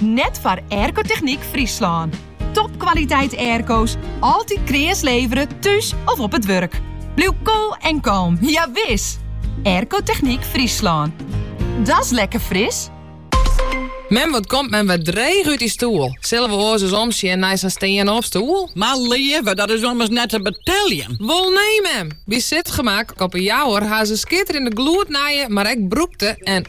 Net foar Aircotechniek Fryslân. Topkwaliteit airco's, altyd kreas levere, thús of op it wurk. Bliuw cool en calm, ja wis! Aircotechniek Fryslân. Dat's lekker Fris! Mem, wat komt mem wer dreech út dy stoel? Sille we oars ris omsjen nei sa'n stean-opstoel? Mar leave, dat is ommers net te beteljen. Wol nee mem! By Sitgemak op 'e Jouwer ha se skitterjende gloednije, mar ek brûkte en.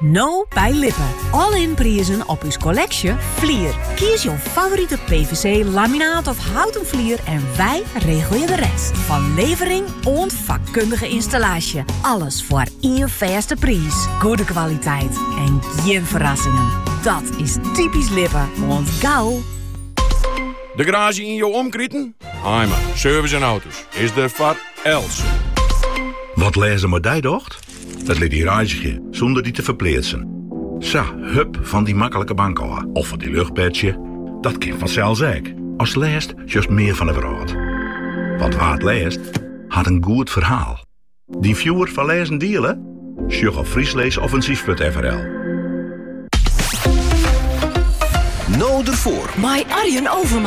No by Lippe. All-in prizen op ús kolleksje Flier. Kies jo favorite PVC, laminaat of houten flier en wij regelje de rest. Van levering oant vakkundige installatie. Alles voor één fêste prijs. Goede kwaliteit en geen verrassingen. Dat is typisch Lippe, want gauw de garage in jouw omkriten? Haima Service en Auto's is de voor Elsen. Wat lezen maar die docht? It lit dy reizgje sûnder dy te ferpleatsen. Sa, hup fan dy maklike bank ôf of fan dy luchtbedsje, dat kin fansels ek. Ast lêst sjochst mear fan 'e wrâld. Want wa't lêst, hat in goed ferhaal. Dyn fjoer foar lêzen diele? Sjoch op frysklêsoffensyf.frl. No derfoar! Mei Arjen Overmars.